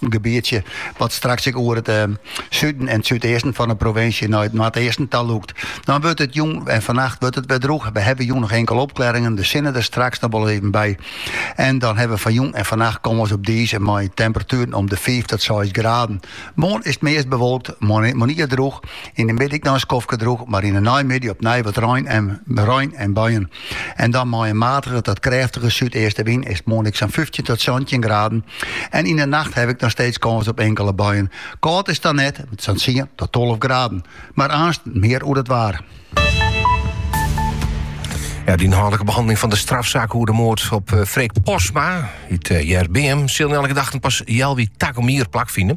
In gebietsje wat straks ek oer it suden en súdeasten fan de provinsje nei it noardeasten ta lûkt. Dan wurdt it jûn en fannacht wurdt it wer drûch. We hawwe jûn noch inkele opklearringen, de sinne der straks noch wol even by. En dan hawwe we foar jûn en fannacht kâns op dize mei temperatueren om de fiif tot seis graden. Moarn is it meast bewolkt, moarnier drûch. Yn de middei ek noch in skoftke droech, mar yn de neimiddei opnij wat rein en buien. En dan mei in matige tot krêftige súdeastenwyn is moarn ek sa'n 15 tot 17 graden. En yn de nacht ha we noch steeds kâns op inkele buien. Kâld is it dan net, sa'n 10 tot 12 graden. Mar aanst mear oer het waar. De ynhâldlike behanneling fan de strafsaak oer de moard op Freek Postma út Hjerbeam sil nei alle gedachten pas healwei takom jier plakfine.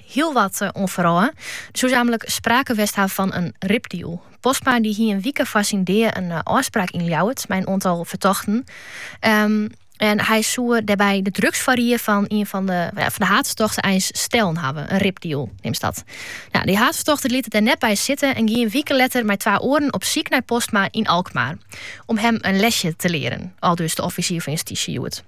hiel wat oan foarôf. Soe nammentlik sprake west ha fan in ripdeal. Postma dy hie in wike foar syn dea in ôfspraak yn Ljouwert mei in oantal fertochten. En hy soe dêrby de drugsfoarried fan ien fan de haadfertochten eins stellen hawwe. In ripdeal neame se dat. Nou, dy haadfertochte liet it dêr net by sitte en gie in wike letter mei twa oaren op syk nei Postma yn Alkmaar om him in lesje te learen, aldus de offisier fan justysje hjoed.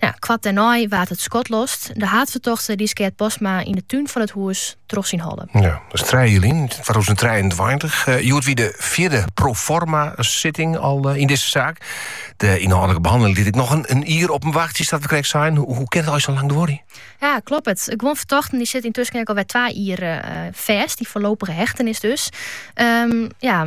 Nou, koart dêrnei waard it skot lost. De haadfertochte dy skeat Postma yn de tún fan it hûs troch syn holle. Ja, dat is 3 july 2023. Uh, hjoed wie de fjirde pro forma sitting al eh, yn dizze saak. De ynhâldlike behanneling lit ek noch in, in jier op him wachtsje, sa't we krekt seinen. Hoe, hoe kin it eins sa lang duorje? Ja, kloppet. Guon fertochten dy sitte yntusken ek al wer twa jier uh, eh, fêst. Dy foarlopige hechtenis dus. Ehm, ja,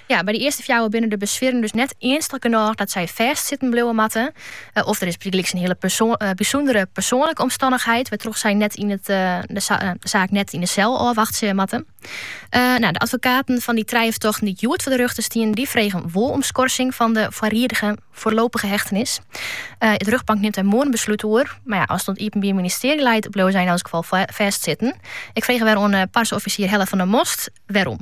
By de earste fjouwer binne de beswieren dus net earnstich genôch dat sy fêst sitten bliuwe moatte. Of der is bygelyks in hiele bysûndere persoanlike omstannichheid wêrtroch't sy de saak net yn de sel ôfwachtsje moatte. De advokaten fan dy trije fertochten dy't hjoed foar de rjochter stienen, dy fregen wol om skorsing fan de foarlopige hechtenis. De rjochtbank nimt dêr moarn in beslút oer. As it oan it Iepenbier Ministearje leit, bliuwe sy yn elk gefal fêst sitten. Ik frege wer oan de parseoffisier Helle van der Most wêrom.